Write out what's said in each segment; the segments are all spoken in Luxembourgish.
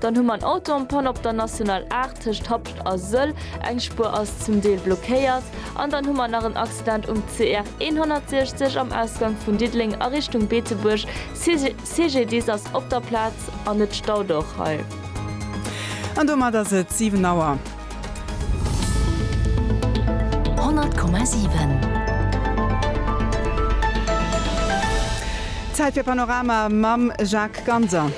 Dann hu mer en Auto en panne op der National 8 tëscht Hapscht a Sëll, eng Spuer ass zum Deel blockéiert. An dann hu mer nach en Accident um CR 160 am Ausgang vun Diddeleng a Richtung Beetebuerg. CGDIS ass op der Plaz an et staut och hei. An domat ass et 7 Auer. 100,7. Zäit fir Panorama mam Jacques Ganser.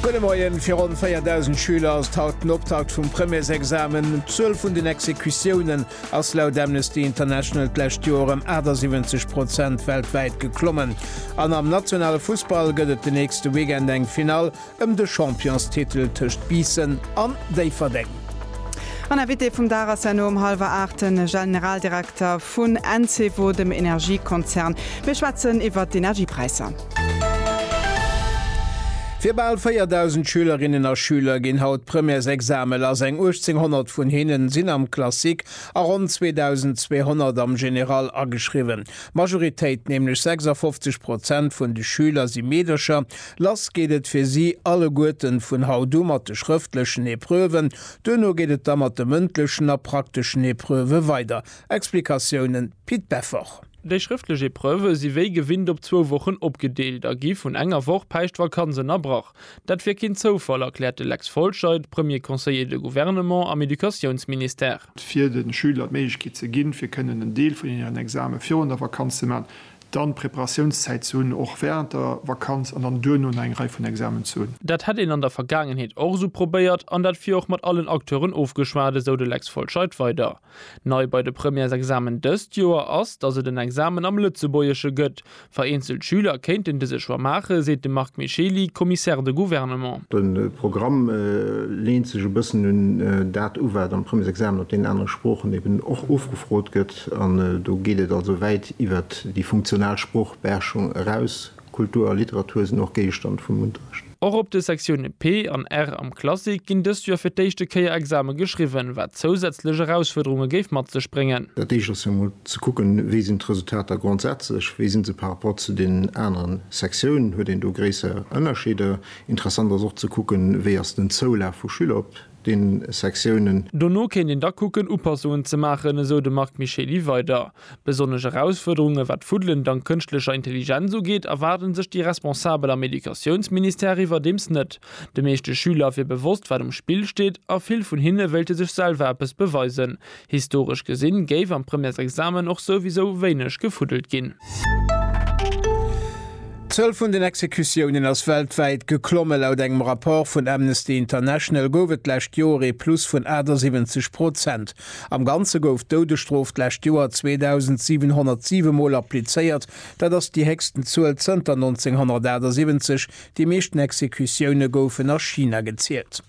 Gudde Moien, Fir ronn 4.000 Schüler ass et haut den Optakt vum Premièresexamen. D'Zuel vun den Exekutiounen ass laut Amnesty International d'lescht Joer ëm 78 Prozent weltwäit geklommen. An am nationale Fussball gëtt et den nächste Weekend eng Finall ëm de Championstitel tëscht Biissen an Déifferdeng. An Invité vum Dag ass herno um hallwer 8 de Generaldirekter vun Encevo, dem Energiekonzern. Mir schwätzen iwwert d'Energiepräisser. Fir bal 4.000 Schülerinnen a Schüler ginn haut d'Premièresexame lass, eng 1.800 vun hinne sinn am Classique a ronn 2.200 am General ageschriwwen. D'Majoritéit, nämlech 56 Prozent vun de Schüler si Meedercher. Lass geet et fir si alleguerten vun haut u mat de schrëftlechen Epreuven. Duerno geet et da mat de mëndlechen a prakteschen Epreuve weider. Explikatiounen, Pit Beffort. Déi schrëftlech Epreuve si wéi gewinnt op zwou Wochen opgedeelt a gi vun enger Woch Päischtvakanz ënnerbrach. Dat wier keen Zoufall, erkläert de Lex Folscheid, Premier conseiller de gouvernement am Educatiounsministère. fir de Schüler d'Méiglechkeet ze ginn, fir kënnen en Deel vun hiren Exame virun der Vakanz ze maachen, dann Preparatiounszäit ze hunn, och wärend der Vakanz, an dann duerno nach eng Rei vun Examen ze hunn. Dat hätt een an der Vergaangenheet och esou probéiert an dat wier och mat allen Acteuren ofgeschwat, esou de Lex Folscheid weider. Nei bei de Premièresexamen dëst Joer ass, datt et en Examen am Lëtzebuergesche gëtt. Vereenzelt Schüler kéinten dëse Choix maachen, seet de Marc Micheli, Commissaire de gouvernement. De Programm leent sech e bëssen un dat u wat am Premièresexamen op deenen anere Sproochen eben och ofgefrot gëtt. An do geet et also wäit iwwert déi funktional Sproochbeherrschung eraus. Kultur a Literatur sinn och Géigestand vum Unterrecht. Och op de Sektioune P an R am Classique ginn dëst Joer fir d'éischte Kéier Exame geschriwwen, wat zousätzlech Erausfuerderunge géif mat sech bréngen. Dat éischt ass jo mol ze kucken, wéi sinn d'Resultater grondsätzlech, wéi si se par rapport zu deenen aneren Sektiounen, huet een do gréisser Ënnerscheeder? Interessant ass och ze kucken, wéi ass den Zoulaf vu Schüler op den Sektiounen. Dono kéint een da kucken, Upassungen ze maachen, esou de Marc Micheli weider. Besonnesch Erausfuerderunge wat d'Fuddelen dank kënschtlecher Intelligenz ugeet, erwaarde sech déi Responsabel am Educatiounsministère iwwerdeems net. De meeschte Schüler wier bewosst, wat um Spill steet a vill vun hinne wéilte sech selwer eppes beweisen. Historesch gesinn géif am Premièresexamen och souwisou wéineg gefuddelt ginn. D'Zuel vun den Exekutiounen ass weltwäit geklomme. Laut engem Rapport vun Amnesty International gouf et d'lescht Joer ee Plus vun 78 Prozent. Am Ganze gouf d'Doudesstrof d'lescht Joer 2.707 Mol applizéiert. Dat ass déi héchsten Zuel zënter 1978. Déi meeschten Exekutioune goufen a China gezielt.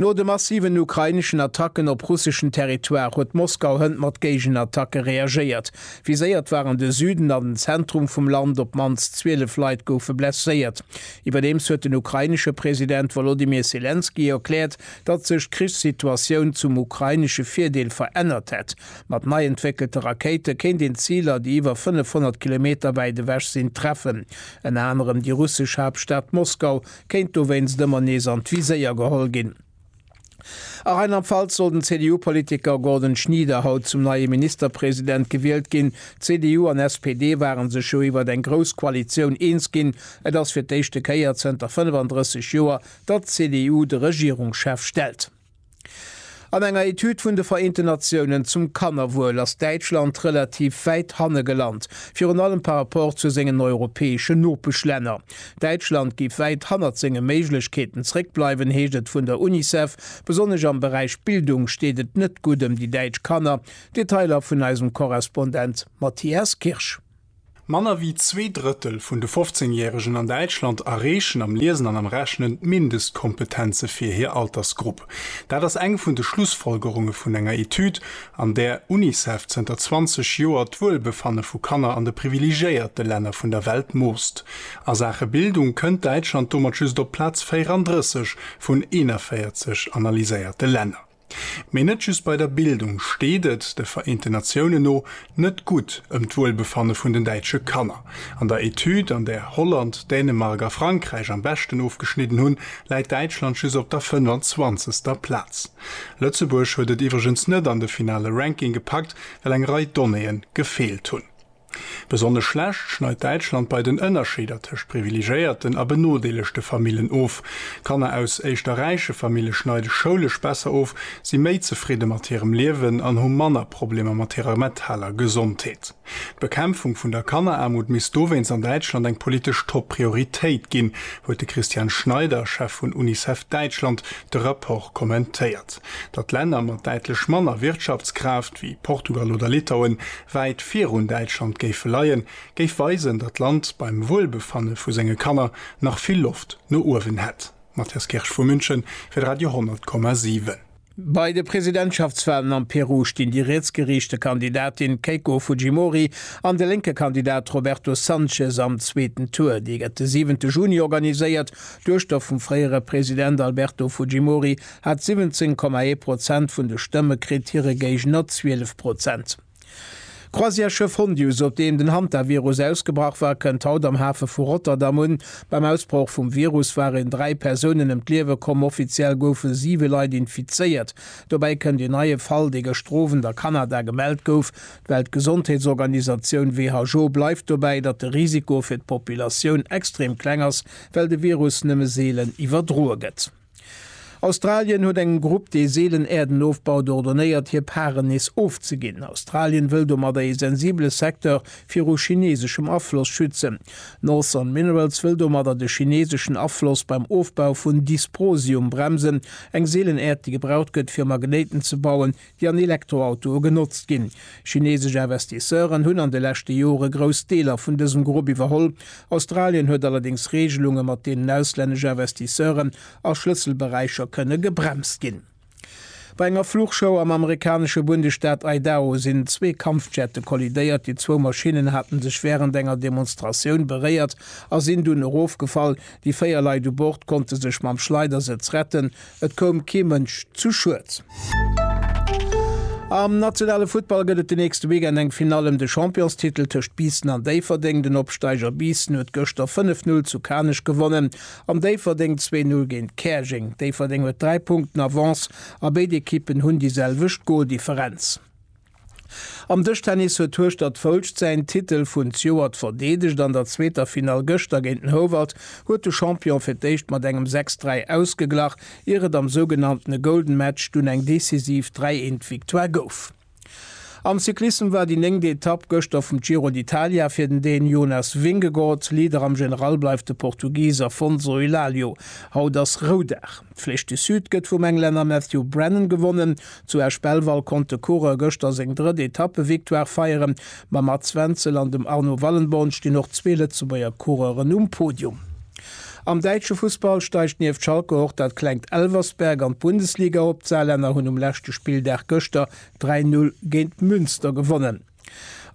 No de massiven ukraineschen Attacken op russeschen Territoire huet Moskau hënt mat Géigenattacke reagéiert. Viséiert waren de Süden an den Zentrum vum Land, op d'mannst 12 Leit goufe blesséiert. Iwwerdeems huet den ukrainesche President Wolodymyr Selenskyj erkläert, datt sech d'Krichssituatioun zum ukrainesche Virdeel verännert hätt. Mat nei entwéckelte Rakéite kéint een Ziler, déi iwwer 500 Kilometer wäit ewech sinn, treffen. Ënner anerem déi russesch Haaptstad Moskau kéint dowéinst ëmmer nees an d'Viséier geholl ginn. A Rheinland-Pfalz soll den CDU-Politiker Gordon Schnieder haut zum neie Ministerpresident gewielt ginn. CDU an SPD ware sech jo iwwert eng grouss Koalitioun eens ginn. Et ass fir d'éischte Kéier zënter 35 Joer, datt d'CDU de Regierungschef stellt. An enger Etüd vun de Vereenten Natiounen zum Kannerwuel ass Däitschland relativ wäit hanne gelant, virun allem par rapport zu sengen europäeschen Nopeschlänner. Däitschland géif wäit hannert senge Méiglechkeeten zréckbleiwen, heescht et vun der Unicef. Besonnesch am Beräich Bildung steet et net gutt ëm déi däitsch Kanner. Detailer vun eisem Korrespondent Matthias Kirsch. Manner wéi zwee Drëttel vun de 15 Järegen an Däitschland erreechen am Liesen an am Rechnen d'Mindestkompetenze fir hir Altersgrupp. Dat ass eng vun de Schlussfolgerunge vun enger Etüd, an där Unicef zënter 20 Joer d'Wuelbefanne vu Kanner an de privilegéierte Länner vun der Welt moosst. A Saache Bildung kënnt Däitschland domat just op Plaz 34 vun 41 analyséierte Länner. Mee net just bei der Bildung steet et, de Vereente Natiounen no, net gutt ëm d'Wuelbefanne vun den däitsche Kanner. An der Etüd, an där Holland, Dänemark a Frankräich am beschten ofgeschnidden hunn, läit Däitschland just op der 25. Plaz. Lëtzebuerg huet et iwwregens net an de finale Ranking gepackt, well eng Rei Donnéeë gefeelt hunn. Besonnesch schlecht schneit Däitschland bei den Ënnerscheeder tëscht privilegéierten a benodeelegte Famillen of. Kanner aus éischter räiche Famille schneide schoulesch besser of, si méi zefridde mat hirem Liewen an hu manner Problemer mat hirer metaler Gesondheet. D'Bekämpfung vun der Kanneraarmut misst dowéinst an Däitschland eng politesch Top-Prioritéit ginn, huet de Christian Schneider, Chef vun Unicef Däitschland, de Rapport kommentéiert. Datt Länner mat däitlech manner Wirtschaftskraaft, wéi Portugal oder Litauen, wäit virun Däitschland géife leien, géif weisen, datt d'Land beim Wuelbefanne vu senge Kanner nach vill Loft no uewen hätt. Matthias Kirsch vu München fir de Radio 10,7. Bei de Presidentschaftswalen am Peru stinn déi rietsgeriichte Kandidatin Keiko Fujimori an de lénke Kandidat Roberto Sanchez am zweeten Tour. Dee gëtt de siwente Juni organiséiert. D'Duechter vum fréiere President Alberto Fujimori hat 17,1 Prozent vun de Stëmme kritt, hire Géigner 12 Prozent. D'Croisièresschëff Hondius, op deem den Hantavirus ausgebrach war, kënnt haut am Hafe vu Rotterdam un. Beim Ausbroch vum Virus waren dräi Persounen ëm d'Liewe komm. Offiziell goufe siwe Leit infizéiert. Dobäi kënnt een neie Fall, dee gëschter Owend a Kanada gemellt gouf. D'Weltgesondheetsorganisatioun WHO bleift dobäi, datt de Risiko fir d'Populatioun extrem kleng ass, well de Virus nëmme seelen iwwerdroe gëtt. Australien huet engem Grupp, dee seelen Äerden ofbaut, ordonéiert, hir Paren nees ofzeginn. Australien wëll domadder ee sensibele Secteur viru chineseschem Afloss schützen. Northern Minerals wëll domadder de chineseschen Afloss beim Ofbau vun Dysprosium bremsen, eng seelen Äerd, déi gebraucht gëtt, fir Magnéiten ze bauen, déi an Elektroautoe genotzt ginn. Chineesesch Investisseuren hunn an de leschte Jore grouss Deeler vun dësem Grupp iwwerholl. Australien huet allerdéngs Reegelunge mat deenen auslännesch Investisseuren a Schlësselberäicher kënne gebremst ginn. Bei enger Fluchshow am amerikanesche Bundesstaat Idaho sinn zwee Kampfjette kollidéiert. Déi zwou Maschinnen hate sech wärend enger Demonstratioun beréiert a sinn dunn erofgefall. Déi véier Leit u Bord konnte sech mam Schleidersëtz retten. Et koum kee Mënsch zu Schued. Am nationale Futtball gëtt et de nächste Weekend eng Finall ëm de Championstitel tëscht Biissen an Déifferdeng. Den Opsteiger Biissen huet gëschter 5, 0 zu Kanech gewonnen an Déifferdeng zwee, 0 géint Käerjeng. Déifferdeng huet dräi Punkten Avance a béid Ekippen hunn déi selwecht Goldifferenz. Am Dëschtennis huet d'Hueschtert Foulscht säin Titel vun Zjoert verdeedegt. An der zweeter Finall gëschter géint den Houwald huet de Champion fir d'éischt mat engem 6, 3 ausgeglach, ier et am sougenanntene Golden Match dunn eng decisiv 3, 1 Victoire gouf. Am Cyclissem war déi néngt Etapp gëschter vum Giro d'Italia fir den Dän Jonas Vingegaard. Leader am General bleift de Portugis Afonso Elalio. Haut ass Roudag. D'Flèche du Sud gëtt vum Englänner Matthew Brennan gewonnen. Zu Esch-Belval konnt de Coureur gëschter seng drëtt Etappevictoire feieren. Mam Mads Wenzel an dem Arno Wallenborn stinn och zwee Lëtzebuerger Coureuren um Podium. Am däitsche Fussball steigt nieft Schalke och dat klengt Elversberg an d'Bundesliga op. D'Saarlänner hunn um leschte Spilldag gëschter 3, 0 géint Münster gewonnen.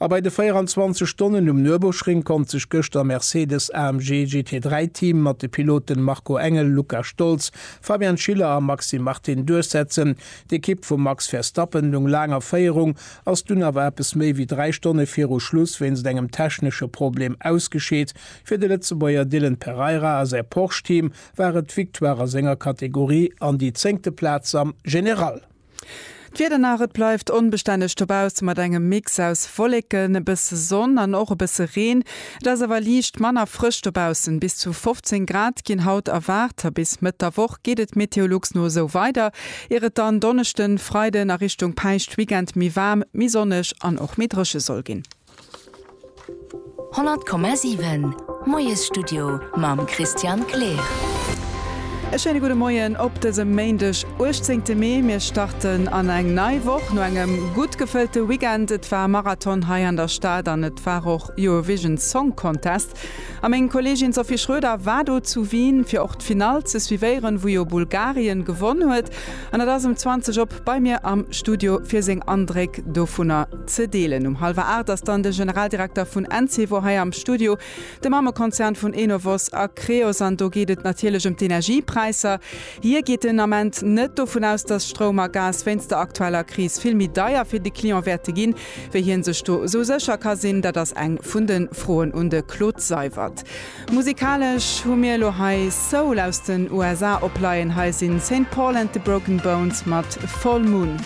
A bei de 24 Stonnen um Nürburgring konnt sech gëschter Mercedes-AMG GT3 Team mat de Piloten Marco Engel, Luca Stolz, Fabian Schiller a Maxime Martin duerchsetzen. D'Ekipp vum Max Verstappen lung laang a Féierung, ass dunn awer eppes méi wéi 3 Stonne viru Schluss wéinst engem technesche Problem ausgescheet. Fir de Lëtzebuerger Dylan Pereira a säi Porsche Team war et d'Victoire a senger Kategorie an déi zéngte Plaz am General. D'Wieder nach, et bleift onbestänneg dobausse mat engem Mix aus Wolleken, e bësse Sonn an och e bësse Reen. Et ass awer liicht manner frësch dobaussen, bis zu 15 Grad ginn haut erwaart a bis Mëtt der Woch geet et Meteolux no esou weider, ier et dann Donneschden, Freiden a Richtung Päischtweekend méi waarm, méi sonneg an och méi dréche soll ginn. 100,7 Moiesstudio mam Christian Kleer. E schéine gudde Moien op dësem Méindeg, 18 Mee. Mir starten an eng nei Woch no engem gutt gefëllte Weekend. Et war Marathon hei an der Stad an et war och Eurovision Song Contest. A meng Kollegin Sophie Schroeder war do zu Wien, fir och d'Finall ze suivéieren, wou jo Bulgarien gewonn huet. An et ass um 20 op bei mir am Studio, fir seng Andréck dovunner ze deelen. Um hallwer 8 ass dann de Generaldirekter vun Encevo hei am Studio, de Mammekonzern vun Enovos a Creos. An do geet et natierlech ëm d'Energiepräisser. Hie geet den Ament net dovun aus, dass Stroum a Gas wéinst der aktueller Kris vill méi deier fir de Client wäerte ginn. Wéi hien sech do esou sécher ka sinn, dat ass eng vun de Froen un de Claude Seywert. Musikalesch hu mir elo hei Soul aus den USA opleien. Hei sinn Saint Paul and the Broken Bones mat Full Moon.